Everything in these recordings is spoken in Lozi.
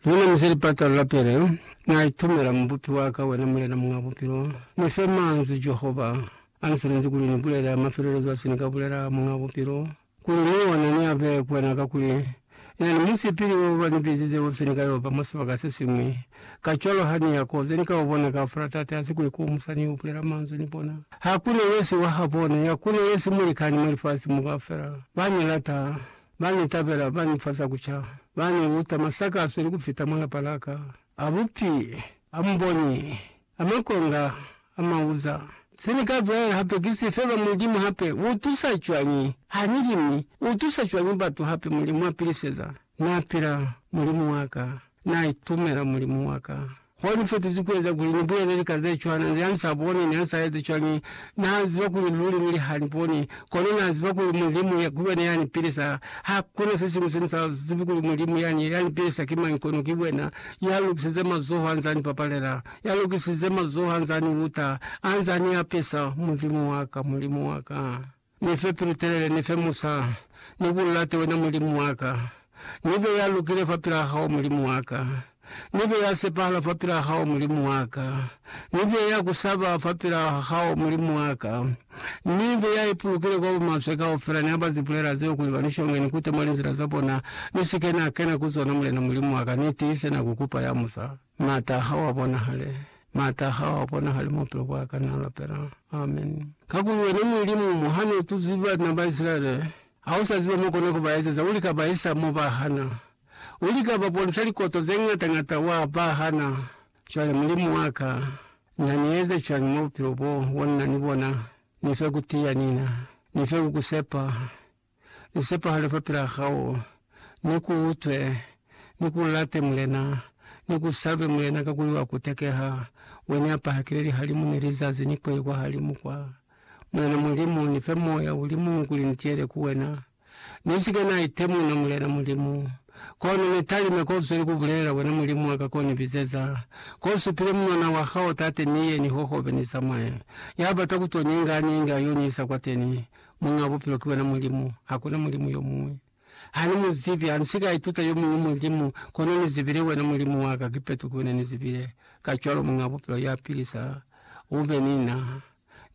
Luna mu zeli patalo la pele, Na itumela Mubupi wa ka, wena Mulena Muñ'a Bupilo. Ni fe manzwi Jehova a ni silinzi kuli ni bulele mafelelezo a se ni ka bulela, Muñ'a Bupilo, kuli ni ona ni abe ku wena, kakuli ina ni musipili wo ba ni bizize wo fise ni ka yo ba mwa sibaka se siñwi. Kacwalo ha ni ya ko ze ni ka u bona kaufela, Tate ha si ku ikomusa ni yo bulela manzwi ni bona. Hakuna yesi wa ha bona, yakuna yesi mulikani mwa lifasi mo kaufela. Ba ni lata. Ba ni tabela, ba ni fa za ku ca, ba ni luta masakazo ni ku fita mwa lapa la ka a bupi, a muboni, a makonga, a mauza. Se ni ka bulela hape ki si, Feba Mulimu hape u tusa cwañi ha ni li, mi u tusa cwañi batu hape? Mulimu a piliseza. Na pila Mulimu wa ka, na itumela Mulimu wa ka. Hoi ni fetizi ku eza kuli ni bulele lika ze cwana, nze ha ni sa boni, ni ha ni sa ezi cwani. Na ziba kuli luli nili ha ni boni, kono na ziba kuli Mulimu ku yena ya ni pilisa. Ha kuna se siñwi se ni sa zibi kuli Mulimu yani ya ni pilisa ki mañi, kono ki wena. Ya lokisize mazoho ha nza ni papalela, ya lokisize mazoho ha nza ni uta, ha nza ni apesa. Mulimu wa ka, Mulimu wa ka! Ni fe pilu telele, ni fe musa, ni ku late wena, Mulimu wa ka. Ni be ya lukile fapil'a hao, Mulimu wa ka. Ni be ya sepahala fapil'a hao, Mulimu wa ka. Ni be ya ku saba fapil'a hao, Mulimu wa ka. Ni be ya ipulukile kwa bumaswe kaufela, ni aba zibulela zeo kuli ba ni shonge, ni kute mwa linzila za bona, ni si ke na kena ku zona, Mulena Mulimu wa ka. Ni tiise na ku kupa ya musa. Maata ahae a bonahale. Maata ahae a bonahale mwa bupilo bwaka, na lapela. Amen. Kakuli wena Mulimu, mo hane u tuzi bana ba Isilaele, ha u sa ziba mo kona ku ba ezeza, u lika ba isa mo ba hana. U lika ba bonisa likoto ze ngata-ngata, wa ba hana. Cwale, Mulimu wa ka, na ni eze cwañi mwa bupilo bo, bo nina ni bona? Ni fe ku tiya, Nina. Ni fe ku ku sepa. Ni sepahale fapilaa hao, ni ku utwe, ni ku late Mulena, ni ku salube Mulena, kakuli wa ku tekeha, we ni apahakile lihalimu ni lizazi ni kweli kwa halimu kwa. Mulena Mulimu, ni fe moya uli muñwi kuli ni tiyele ku wena. Ni si ke na itemuna, Mulena Mulimu. Kono ni talime ko zweli ku bulelela, wena Mulimu wa ka ko ni bizeza, ko supile munwana wa hao, Tate, ni ye, ni hohobe, ni zamaye. Ya bata ku to ni inga, a ni inge, a yo ni isa kwateni. Muñ'a bupilo ki wena Mulimu, hakuna mulimu yo muñwi. Ha ni mu zibi, ha ni si ka ituta yo muñwi mulimu, kono ni zibile wena Mulimu wa ka, kipeto ki wena ni zibile. Kacwalo Muñ'a Bupilo ya pilisa, u be ni na,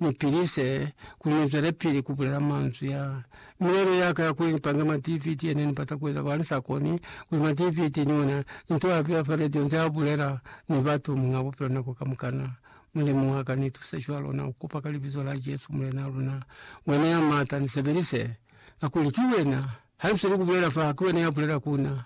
ni pilise, kuli ni zwelepili ku bulela manzwi a. Milelo ya ka ya kuli ni pange ma DVD ye ne ni bata ku eza, kono ha ni sa koni, kuli ma DVD ni ona, ni to a beya fa radio nze a bulela ni batu, Muñ'a Bupilo nako kamukana, Mulimu wa ka, ni tuse cwalo na kupa ka Libizo la Jesu, Mulena luna. Wena ya Mata, ni sebelise, kakuli ki Wena. Ha nsi ni kubulela fa, ki Wena ya bulela ku na.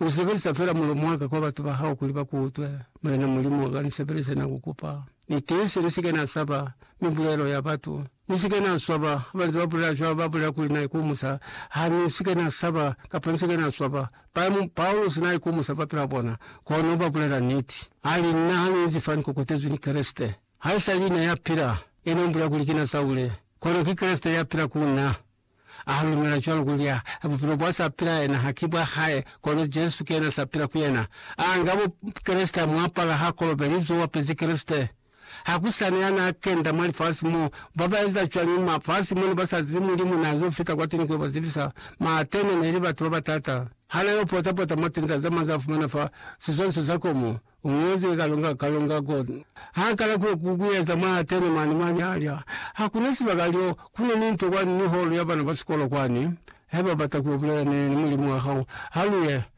U sebelisa fela mulomo wa ka kwa batu ba Hao kuli ba kuutwe. Mulena Mulimu wa ka, ni sebelise, na ku kupa. Ni tiise, ni si ke na saba mibulelo ya batu. Ni si ke na swaba ha ba nze ba bulela cwalo, ba bulela kuli na ikumusa. Ha ni si ke na saba, kapa ni si ke na swaba. Paimu Paulusi naikumusa ba pela bona, kono ba bulela niti. Ali, Na haluzi fani kokotezwi ni Kreste. Haisali na ya pila, e nombula kuli kina Saule, kono ki Kreste ya pila ku na. A halumela cwalo kuli a, bupilo bwa sa pila yena ha ki bwa hae, kono Jesu ki yena sa pila ku yena. A nga bo Kreste, a mu apala, ha kolobeli, zo wapezi Kreste. Ha ku sa na ya n'a kenda mwa lifasi mo. Ba ba eza cwañi mwa fasi mo ne ba sa zibi Mulimu n'a z'o fita kwa teni ku yo ba zibisa? Ma Atene ne li batu ba batata. Ha na yo pota-pota mwa tinza ze manz'a fumana fa siswaniso sa komo, u ñozi kalonga kalonga ko. H'a kala ku yo ku ku eza mwa Atene mane, mwa nyalya. Ha ku na sibaka liyo, ku na ni nto kwani ni holo ya bana ba sikolo kwani. Haiba u bata ku yo bulela ne ni Mulimu wa hao, ha lu ye.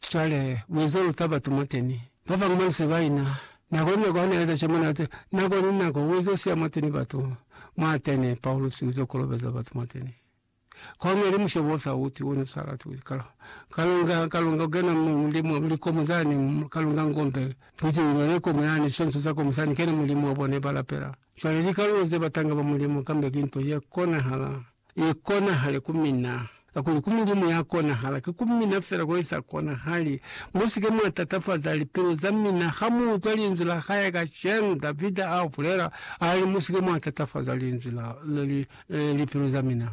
Cwale, mueza lu taba tu mwateni. Babañwi ba nse ba ina. Nako ni nako ha Na eza cimo, Na te, nako ni nako, U ezo siya mwateni batu. Mwateni, Paulusi uzo kolobeza batu mwateni. Kono ili mushobo osa uti uno sa latuzi. Ka, ka lunga, ka lunga kukena mu, mu limu, mu likomo zani, ka lunga ngombe, kuti u nole komo yani, sonso za komo sani, kena mu limu wa bona iba lapela. Cwale, likalulo ze batanga ba Mulimu, kambe ki nto ye konahala. i konahale ku mina, kakuli ku Mulimu ya konahala, ki ku mina fela ko i sa konahali. Musike mwa tatafaza lipilu za mina ha mu utwa linzwi la hae kacenu. Davida a bulela, a li, Musike mwa tatafaza linzwi la, li, lipilu za mina.